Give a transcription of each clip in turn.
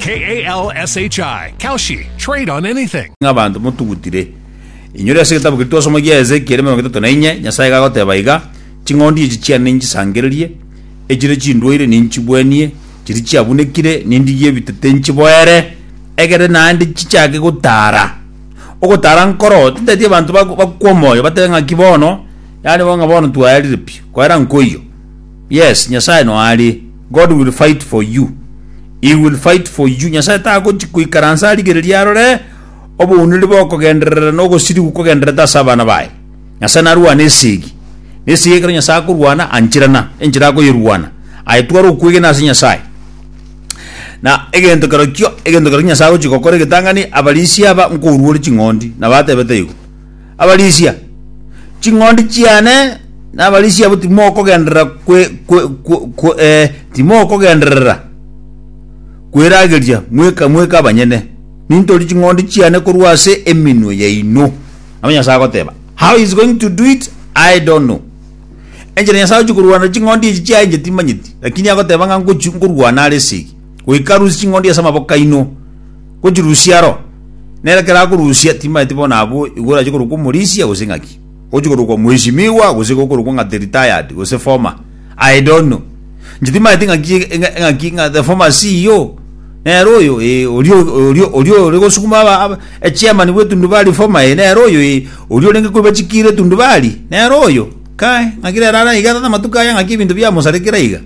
K A L S H I, Kalshi, trade on anything. Ng'a abanto motugutire. Inyore ase egetabu keria twasoma gia Ezekieli emerongo etato na inye, Nyasae iga agoteba iga, Ching'ondi echi chiane ninchisangererie, echire chindwaire ninchibuenie, chiria chiabunekire nindigie ebitete nchiboere, egere naende chichake gotara. Ogotara nkoro, tinteti abanto bakwe omoyo, batebe ng'aki bono, yaani bo ng'a bono twaerire pi, koera nkoiyo. Yes nyasaye no are God will fight for you He will fight for you nyasaye tagochi koikaransa arigererie arore obounire bokogenderera na ogosirigu kogendererete ase abana baye nyasaye narwane esegi na esegi ekero nyasaye akorwana anchirana enchera akoyeruana aye twara okwegena ase nyasaye na egento kerokio egento kerokio nyasaye agochi gokora egetang'ani abarisia aba nkoruore ching'ondi nabatebete igo. Abarisia, ching'ondi chiane nabarisia abo timokogenderera kwe, kwe, kwe, kwe, eh, timokogenderera kwerageria mweka mweka abanyene. Nintori ching'ondi chiane korwa ase eminwe yaino. Nabo Nyasae agoteba, How he's going to do it, I don't know. Enchera Nyasae ochia korwana na ching'ondi echi chiaye inche timanyeti, lakini agoteba ng'a ngochi nkorwana are esegi, goika arusie ching'ondi ase amaboko aino. Gochirusia aro, nere kera akorusia timaeti bono abwo igo orache korokwa omorisia gose ing'aki, gochia korokwa mweshimiwa gose igo okorokwa ng'a the retired gose former. I don't know. Inche timaeti ng'aki ng'a- ng'aki ng'a the former CEO nere oyo ee oria oria oria ore gosukuma aba- aba- echairman bw'etundubari former ee nere oyo ee oria orenge koiba chikiira etundubari nere oyo kai ng'aki rero are iga tata amatuko aya ng'aki ebinto biamosarekera iga.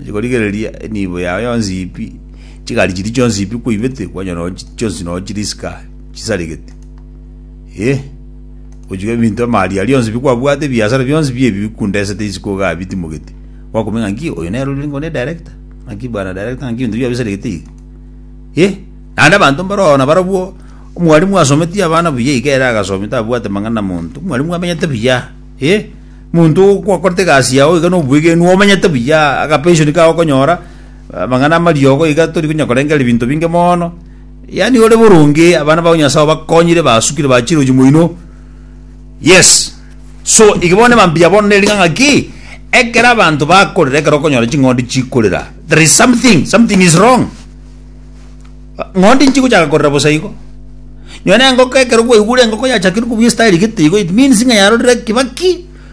Achi korigereria enibo yago yonsi pi. Chigari chiria chionsi pi kwaibete, kwanyora nonye chi- chionsi nonye chiri isika chisaregete. Eh, ogochika ebinto amaaria aria onsi pi kwabwate, ebiasara bionsi pi ebi bikundesete isiko iga bitimogete. Gwakumenya ng'a nki oyo nere orenge onde director, ng'a nki bwana director, ng'a nki ebinto bia bisaregete iga. Eh, naende abanto mbare oo nabarabwo, omwalimu asometie abana buya iga ere agasomi tabwate mang'ana na monto, omwalimu amenyete buya, eh, monto okwakorete egasi yao iga na obwegenwa omenyete buya, akapension kao okonyora, Amang'ana amariogo iga tori konya korengereria binto binge mono. Yaani ore boronge abana bao Nyasae obakonyire basukire bachiroji moino. Yes. So iga bono emambiya bono neri ng'a ki ekero abanto bakorera ekero okonyora ching'ondi chikorera there is something something is wrong. Ng'ondi nchigochaka korera bosa igo. Nonye na engoko ekero kwaigure engoko yachakire kobua estyle gete igo it means ng'a yarorire Kibaki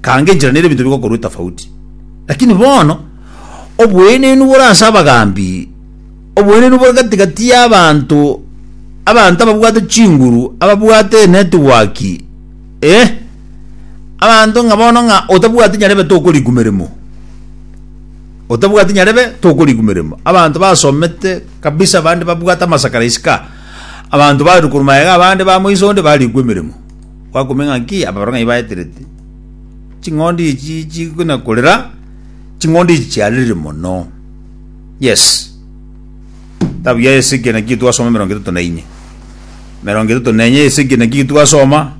Kange enchera nere ebinto bigokorwa etafauti. Lakini bono oboenenu bore ase abagaambi, oboenenu bore gati-gati y'abaanto, abanto ababwate chinguru, ababwate enetiwaki, eh, abanto ng'a bono ng'a otabwati nyarebe tokoriku meremo, otabwati nyarebe tokoriku meremo. Abanto basomete kabisa abande babwate amasakara isiko aa, abanto barure korwa magega abande bamoiso onde barikwa emeremo. Gwakumia ng'aki ababorong'anyi baeterete, ching'ondi echi chigokina korera, ching'ondi echi chiarire mono. Yes. Tabu ya Hezekia naki twasoma emerongo etato na ine. Emerongo etato na enye Hezekia naki twasoma,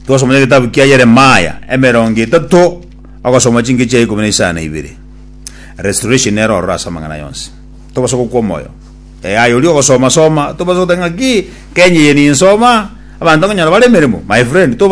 twasoma ya getabu kia Yeremaya, emerongo etato ogosoma chinke chia ikomi na isano na ibere. Restoration ero ororo ase amang'ana yonsi. Tobasa gokwa omoyo. Eh, aye oria ogosoma soma, tobasa goteba ng'aki, Kenya eye ninsoma, abanto nkonyora bare emeremo, my friend, tobasa.